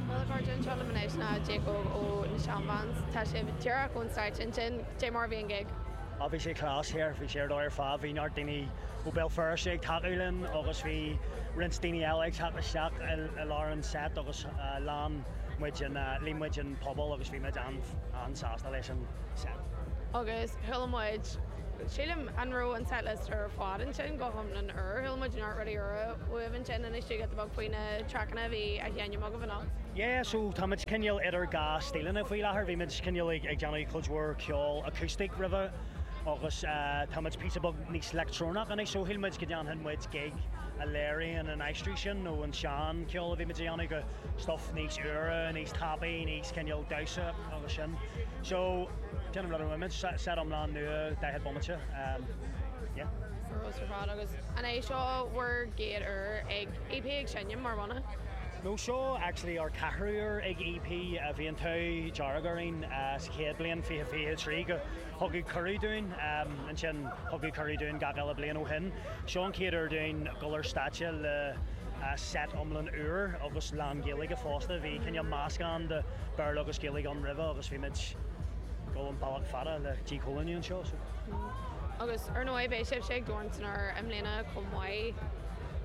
Bhuel, a chairde, anseo liom anois ná Jacob ó na Shan Vans. Tá sibh díreach ón stáitse ansin. Cad é mar a bhí an gig. Á, bhí sé class here. Bhí sé ar dóigh ar fad. Bhí neart daoine ó Béal Feirste ag tacú linn agus bhí roinnt daoine eile ag teacht isteach i lár an set agus líon muid an, líon muid an puball agus bhí muid an-sásta leis an set. Agus chuala muid, sílim, an raibh an set list ar fad ansin go hiomlán úr? Chuala muid neart rudaí úra. Uaibh ansin. Inis dúinn giota beag faoi na traiceanna a bhí á sheinm agaibh anocht. Yeah so táimid cineál idir dhá stíleanna faoi láthair, bhí muid cineál ag déanamh cuid mhór ceol acoustic roimhe agus táimid píosa beag níos leictreonach anois so shíl muid go ndéanfadh muid gig a léiríonn an aistear sin ón sean ceol a bhí muid a dhéanamh go stuff níos úire, níos tapaidh, níos cineál damhsa agus sin so déanamh rud a bhfuimid, set iomlán nua 40 bomaite, yeah. Ar fheabhas ar fad agus an é seo bhur gcéad uair ag EP ag seinm mar bhanna? No seo actually ár ceathrú uair ag EP. Bhí an t-ádh dearg orainn sa chéad bliain fiche fiche a trí gur thugadh cuireadh dúinn ansin thugadh cuireadh dúinn gach eile bliain ó shin. Seo an chéad uair dúinn dul ar stáitse le set iomlán úr agus lán Gaeilge fosta. Bhí cineál meascán de Béarla agus Gaeilge ann roimhe agus bhí muid ag dul an bealach fada le díchoilíniú anseo. Agus ar ndóigh beidh sibhse ag Dorn san Aer i mbliana chomh maith.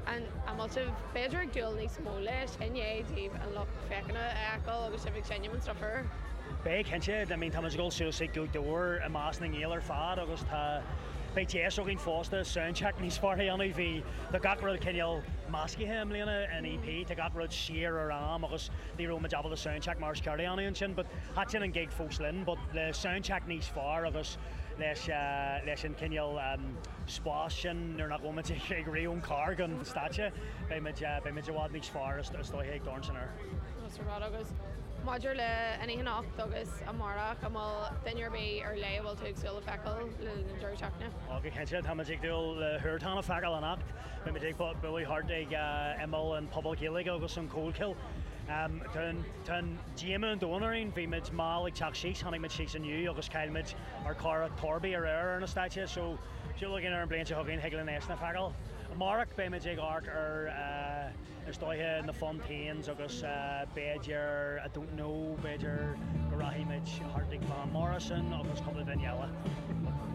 An bhfuil tú b'fhéidir ag dúil níos mó leis, i ndiaidh daoibh an lucht féachana a fheiceáil agus sibh ag seinm an stuif úr. Beidh cinnte, I mean táimid ag dul suas ag Gaoth Dobhair i measc na nGael ar fad agus tá, beidh deis againn fosta soundcheck níos fearr a dhéanamh, bhí, tá gach rud cineál meascaithe i mbliana in EP, tá gach rud siar ar am agus ní raibh muid ábalta soundcheck mar is ceart a dhéanamh ansin but thaitin an gig fós linn but le soundcheck níos fearr agus. leis leis an cineál spáis sin nuair nach bhfuilmid ag rith ón carr chuig an stáitse. Beimid beimid i bhfad níos fearr is is dóiche ag Dorn san Aer. Más rud agus maidir le anything anocht agus amárach an bhfuil duine ar bith ar leith a bhfuil tú ag súil le feiceáil le linn na deireadh seachtaine? Ó go cinnte táimid ag súil le Huartan a feiceáil anocht. Beimid ag bualadh thart ag imeall an Puball Gaeilge agus an Collchoill. Tá an tá an Díomá an domhain orainn, bhí muid mall ag teacht síos, tháinig muid síos inniu agus chaill muid ár cara Torby aréir ar na stáitse, so súil againn ar an bhliain seo chugainn, thig linn eisean a fheiceáil. Amárach beimid ag amharc ar, eh, is dóiche, na Fontaines agus, eh, b'fhéidir, I don't know, b'fhéidir go rachaimid thart ag Van Morrison agus cúpla duine eile.